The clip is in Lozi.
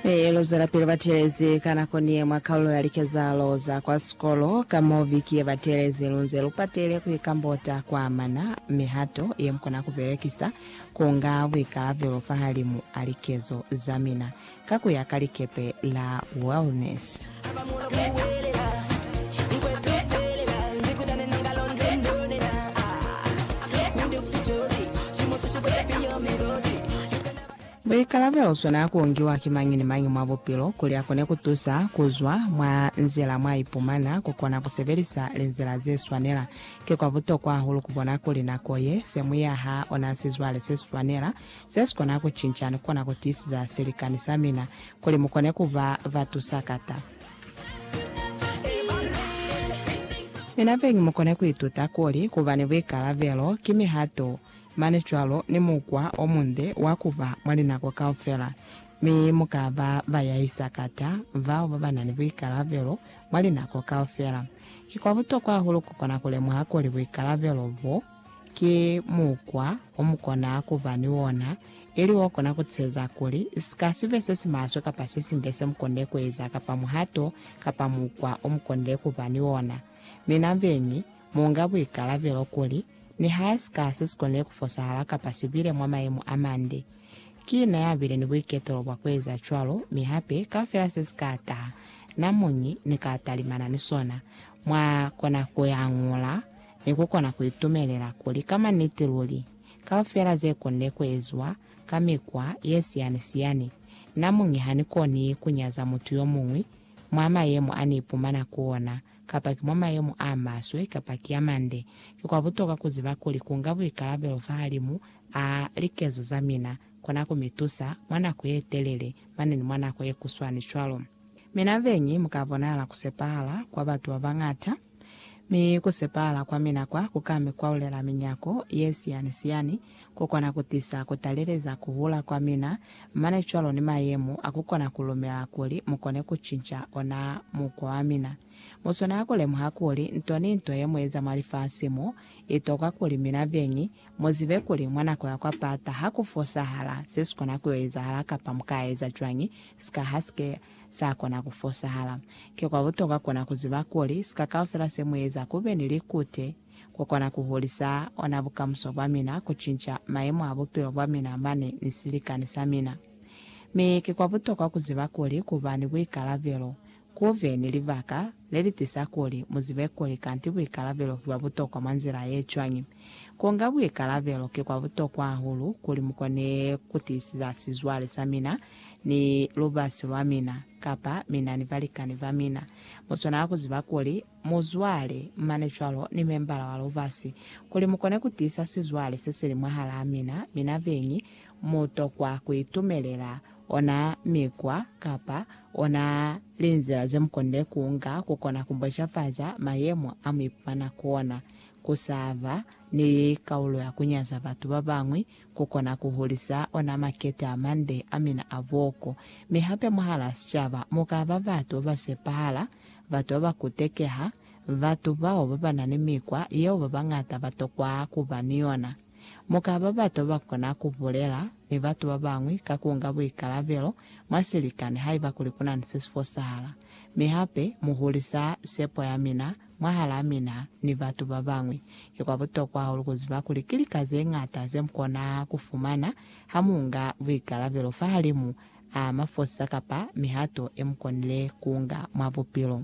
Ee, lu zwelapili ba teelezi ka nako ni ye mwa kaulo ya likezahalo za kwa sikolo. Ka mo viki ye batelezi, lu nze lu patile ku ikambota kwa amana mihato ye mu kona ku belekisa ku nga buikalabelo fahalimu a likezo za mina, ka ku ya ka likepe la Wellness. Buikalabelo sona ku ngiwa ki mañi ni mañi mwa bupilo kuli a kone ku tusa ku zwa mwa nzila mwa ipumana. Ku kona ku sebelisa linzila ze swanela. Ki kwa butokwa hahulu ku bona kuli nako ye se mu yaha ona sizwale se swanela, se si kona ku cinca ni ku kona ku tiisiza silikani sa mina kuli mu kone ku ba ba tusakata. Mina beñi mu kone ku ituta kuli ku ba ni buikalabelo ki mihato Mane cwalo ni mukwa o munde wa ku ba mwa linako kaufela, mi mu ka ba ba yahi sakata, bao ba ba na ni buikalabelo mwa linako kaufela. Ki kwa butokwa hahulu ku kona ku lemuha kuli buikalabelo bo ki mukwa o mu kona ku ba ni ona, ili o kona ku tiheza kuli si ka si be se si maswe kapa se sinde se mu konde ku eza kapa muhato kapa mukwa o mu konde ku ba ni ona. Mina beñi, Mu nga buikalabelo kuli, nihae sika se si konile ku fosahala kapa si bile mwa mayemo a mande, ki na ya bile ni buiketelo bwa ku eza cwalo, mi hape, kaufela se si ka taha, na muñi ni ka talimana ni sona. Mwa kona ku hañula, ni ku kona ku itumelela kuli, ka maniti luli, kaufela ze konile ku eziwa, ka mikwa ye siyani-siyani, na muñi ha ni koni ku nyaza mutu yo muñwi mwa mayemo a ni ipumana ku ona. kapa ki mwa mayemo a maswe kapa ki a mande, ki kwa butokwa ku ziba kuli ku nga buikalabelo fahalimu a likezo za mina kona ku mi tusa mwa nako ye telele mane ni mwa nako ye kuswani cwalo. Mi nabeñi mu ka bonahala ku sepahala kwa batu ba bañata, mi ku sepahala kwa mina kwa ku ka mi kwaulela minyako ye siyani-siyani ku kona ku tisa ku taleleza ku hula kwa mina, mane cwalo ni mayemo a ku kona ku lumela kuli mu kone ku cinca ona mukwa wa mina. Mu swanela ku lemuha kuli nto ni nto ye mu eza mwa lifasi mo, i tokwa kuli mina beñi mu zibe kuli mwa nako ya kwa pata ha ku fosahala se si kona ku yo ezahala kapa mu ka eza cwañi sika ha si ke sa kona ku fosahala. Ki kwa butokwa ku na ku ziba kuli sika kaufela se mu eza ku be ni likute, ku kona ku hulisa ona bukamuso bwa mina, ku cinca mayemo a bupilo bwa mina mane ni silikani sa mina. Mi ki kwa butokwa ku ziba kuli ku ba ni buikalabelo, ku be ni libaka le li tisa kuli mu zibe kuli kanti buikalabelo ki bwa butokwa mwa nzila ye cwañi. Ku nga buikalabelo ki kwa butokwa hahulu kuli mu kone ku tiisisa sizwale sa mina ni lubasi lwa mina, kapa mina ni balikani ba mina. Mu swanela ku ziba kuli muzwale, mane cwalo ni membala wa lubasi, kuli mukone kutiisa sizwale sesili mwahalaa mina, mina beñi mutokwa kuitumelela ona mikwa kapa ona linzila zemukonile kuunga kukona kumbocafaza mayemo amuipumana kuona, kusaaba, ni kaulo ya kunyaza batu babañwi ku kona ku hulisa ona makete a mande a mina a boko. Mi hape mwahalaa sicaba mu ka ba batu ba ba sepahala, batu ba ba kutekeha, batu bao ba ba na ni mikwa yeo ba bañata ba tokwa ku ba ni yona. Mu ka ba batu ba ba kona ku bulela ni batu ba bañwi ka ku nga buikalabelo mwa silikani haiba kuli ku na ni se si fosahala. Mi hape mu hulisa sepo ya mina Mwahalaa mina ni batu babañwi, ki kwa butokwa hahulu kuziba kuli ki lika zeñata zemukona kufumana hamuunga buikalabelo fahalimu a mafosisa kapa mihato yemukonile kuunga mwa bupilo.